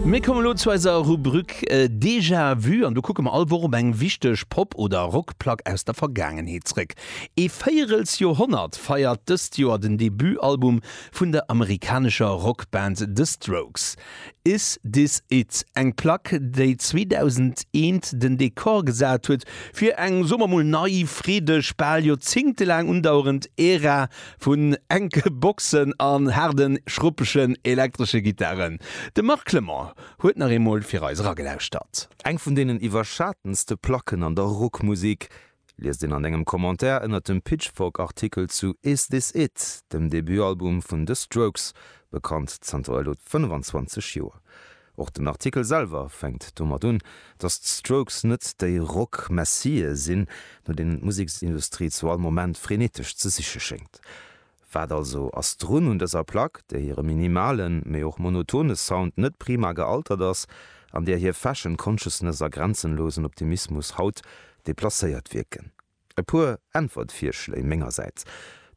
Mir kommen elo zu eiser Rubruk Déjà Vu an do kucke mer all Woch op eng wichteg Pop oder Rockplack aus der Vergaangenheet zréck. Ee Véierelsjorhonnert feiert dëst Joer den Debutalbum vun der amerikanescher Rockband The Strokes. Is This It? Eng Plack, déi 2001 den Dekor gesat huet fir eng, soe mer mol, nei, freedeg, bal joerzéngtelaang undauerend Ära Vun enke Boxen an haarden, schruppegen elektresche Gittaren, de Marc Clement huet nach eemol fir eis eragelauschtert. Eng vun deenen iwwerschatenste Placken an der Rockmusik, liest een an engem Commentaire ënnert dem Pitchfork-Artikel zu Is This It? dem Debutalbum vun The Strokes, bekannt zanter elo 25 Joer. Och den Artikel selwer fänkt domat un, datt d'Strokes net déi Rock-Messië sinn, no deenen d'Museksindustrie zu all Moment frenetesch ze siche schéngt. Wat also ass drun un dëser Plack, där hire minimalen, mee och monotone Sound net prima gealtert ass, an där hir Fashion-Consciousness a grenzenlosen Optimismus haut deplacéiert wierken? E puer Äntwertvirschléi mengersäits,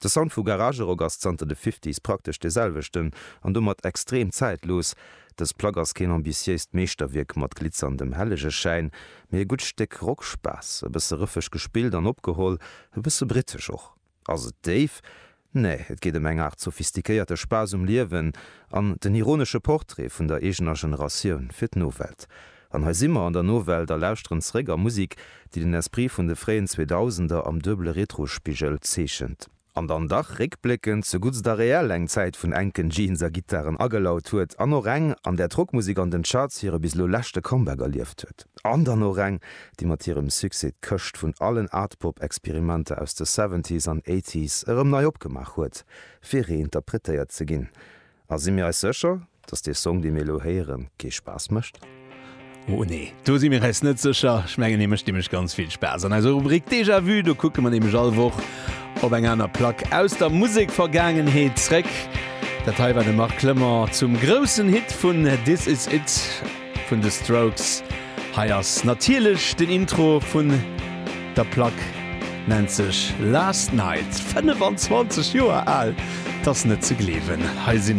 De Sound vu Garagerock ass zanter de Fifties praktesch dee selwechten an domat extrem zäitlos. Dës Plack ass keen ambitiéist Meeschterwierk mat glitzerndem Hellegeschäin, mee e gutt Stéck Rockspaass. E bësse rëffeg gespillt an opgeholl, e bësse britesch och. Ass et déif? Nee, et geet ëm eng Aart sophistiquéierte Spaass um Liewen an den ironesche Portrait vun der eegener Generatioun fir d'Nowelt. An hei si mer an der Nowelt a lauschteren zeréck a Musik, déi den Esprit vun de fréien Zweedausender am duebele Retrospigel zeechent, an dann dach réckbléckend zu Guts da Real eng Zäit vun enken Jeans a Gittaren agelaut huet, an och eng, an där d'Rockmusik an den Charts hire bis elo leschte Comeback erlieft huet. An dann och eng, déi mat hirem Succès d'Këscht vun allen Art-Pop-Experimenter aus de Seventies an Eighties erëm nei opgemaach huet, fir reinterpretéiert ze ginn. A si mir eis sécher, datt dee Song, dee mir elo héieren, kee Spaass mécht? Oh nee, do si mir eis net sécher. Ech mengen, hie mécht nämlech ganz vill Spaass. An eiser Rubrik Déjà Vu, do kucke mer nämlech all Woch op eng aner Plack aus der Musekvergaangenheet zréck. Dat hei war de Marc Clement zum groussen Hit vun This Is It. Vun de Strokes. Hei ass natierlech den Intro vun der Plack, nennt sech Last Night, 25 Joer al, 't ass net ze gleewen. Hei si